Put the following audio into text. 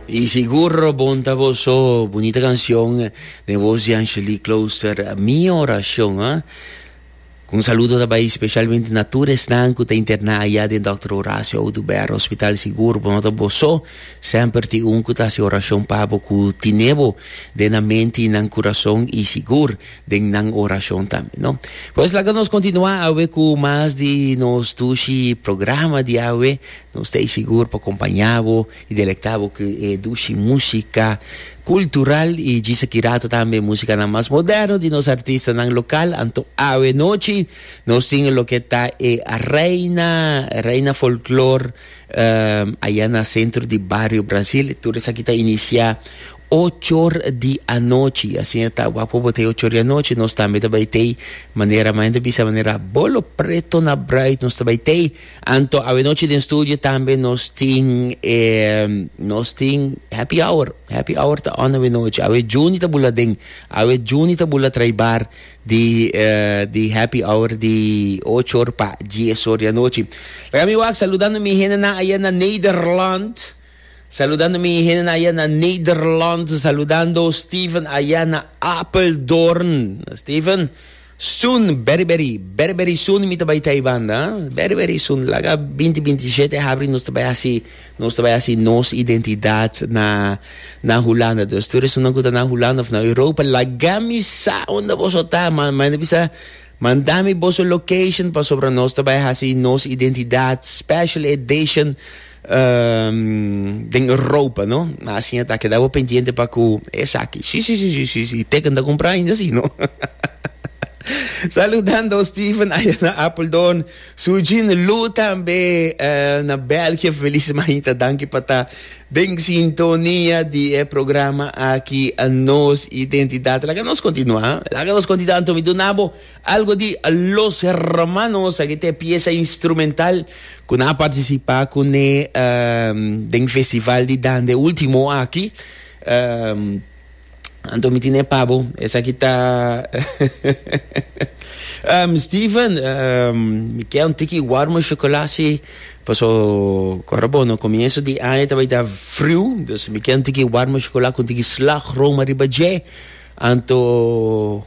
Y seguro bon ta boso bonita canción de voz de Angelique Closer, Mi Oración. ¿ah? Un saludo daarbij specialmente na tur esnan ku ta interna allá den Dr. Horacio Oduber Hospital Sigur bonota boso semper ti un ku ta si oracion pabo ku tinebo den na menti nan corazon y sigur den nan oracion tambe no. Pues laga nos continua awe ku mas di nos dushi programa di awe Nos ta ei sigur pa kompañá bo i delektá bo ku e dushi músika kultural i djisa ki rato tambe e músikanan mas moderno di nos artistanan lokal. Anto awe nochi nos tin loke ta e Reina Reina Folklor aya na sentro di Bario Brasil. Tur esaki ta inisiá ochor di anochi i asina ta wapu bo ta e ochor di anochi nos tambe ta bai t'ei manera maña ta bisa manera bolo preto na bruid nos ta bai t'ei. Anto awenochi den studio tambe nos tin e nos tin happy hour. Happy hour ta on awenochi. Awe Juni ta bula den. Awe Juni ta bula trai bar di eh, di happy hour di ocho or pa dies or di anochi. Laga mi wak saludando mi hendenan aya na Nederland. Saludando mi hendenan aya na Nederland. Saludando Steven aya na Apeldoorn. Steven, Soon, beri beri, beri beri soon mi ta bai ta e banda, beri beri soon, laga binti binti y shete habri nos ta bai hasi, nos ta bai hasi nos identidad na na Hulanda, dus tur esunnan cu ta na Hulanda of na Europa laga mi sa unda boso ta, ma manda mi bisa, manda mi boso location pasobra nos ta bai hasi nos identidad, special edition. den e ropa no na asin ta keda bo pendiente pa ku esaki si si si si si teken ta kumpra ainda si no Saludando Steven aya na Apeldoorn su jin Lou tambe na België feliz mañita danki pa ta den sintonia di e programa aki nos identidad laga nos kontinua laga nos kontinua anto mi duna bo Algo di Los Hermanos, aki ta e piesa instrumental cu nan a participa cu ne um, den festival di dande ultimo aki. Um, anto mi tine pa bo, esaki ta... um, Steven, um, mi ke un tiki warme chocola si, paso cora bo no comienzo di aña ta bay ta friu, dus mi ke un tiki warme chocola cu un tiki slagroom ariba dje, anto...